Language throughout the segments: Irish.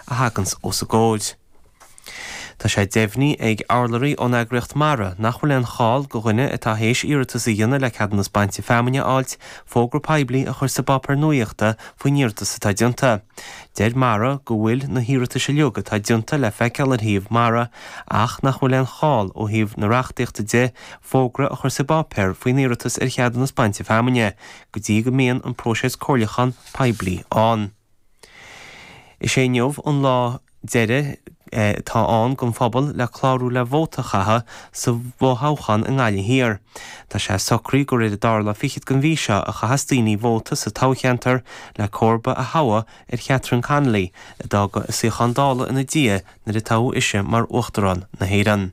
a thaganns os a gcomhair. Tá sé deimhnithe ag urlabhraí ón eagraíocht MARA nach bhfuil aon chall go dhuine atá théis iarratas a dhéanamh le ceadúnas bainte feamainne a fháilt fógra poiblí a chur sa bpáipéar nuaíochta faoin iarratas atá déanta. Deir MARA go bhfuil na hiarratais uilig atá déanta le feiceáil ar shuíomh MARA ach nach bhfuil aon chall ó thaobh na reachtaíochta de fógra a chur sa bpáipéar faoin iarratas ar cheadúnas bainte feamainne go dtí go mbíonn an próiseas comhairliúcháin poiblí ann. Is é inniu an lá deiridh atá ann don phobal le clárú le vóta a chaitheamh sa bhfo-thoghchán i nGaillimh Thiar. Tá sé socraithe gur ar an dara lá fichead den mhí seo a chaithfeas daoine vóta sa toghcheantar le comharba a thoghadh ar Chatherine Connolly, a d'fhág a suíochán Dála ina diaidh nuair a toghadh ise mar Uachtarán na hÉireann.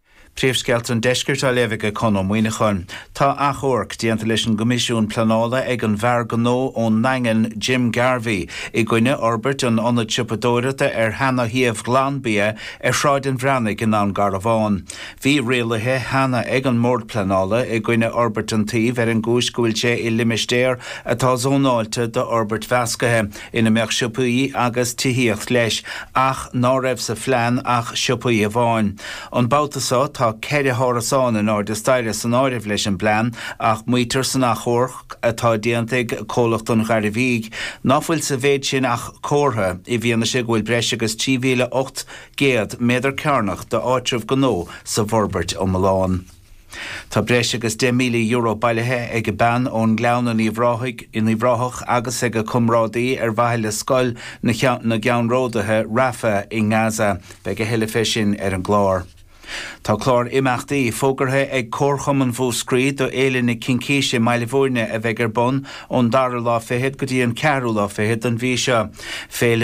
Príomhscéalta an Deiscirt á léamh ag Conn Ó Muíneacháin. Tá achomharc déanta leis an gCoimisiún Pleanála ag an bhfear gnó ón nDaingean Jim Garvey i gcoinne fhorbairt an ionad siopadóireachta ar Sheana Shuíomh Ghlan Bia ar Shráid an Bhreathnaigh i nDún Garbhán. Bhí rialaithe cheana ag an mBord Pleanála i gcoinne fhorbairt an tsuímh ar an gcúis go bhfuil sé i limistéar atá zónáilte d'fhorbairt mheasctha ina mbeadh siopaí agus tithíocht leis, ach ná raibh sa phlean ach siopaí amháin. An babhta seo tá ceithre hárasán in airde staighre san áireamh leis an bplean, ach maítear san achomharc atá déanta ag Comhlacht an Ghairbhígh ná fuil sa mhéid sin ach comhartha, i bhfianaise go bhfuil breis agus 3,800 méadar cearnach d'áitreabh gnó sa bhforbairt iomlán. Tá breis agus €10,000 bailithe ag bean ón nGleann in Uíbh Ráthach agus ag a comrádaí ar mhaithe le scoil na gceannródaithe i Rafah i nGaza. Beidh a thuilleadh fé sin ar an gclár. Tá clár imeachtaí fógartha ag Comharchumann Mhúscraí do Fhéile na Cincíse i mBaile Bhúirne a bheidh ar bun ón dara lá fichead go dtí an ceathrú lá fichead don mhí seo. Féile.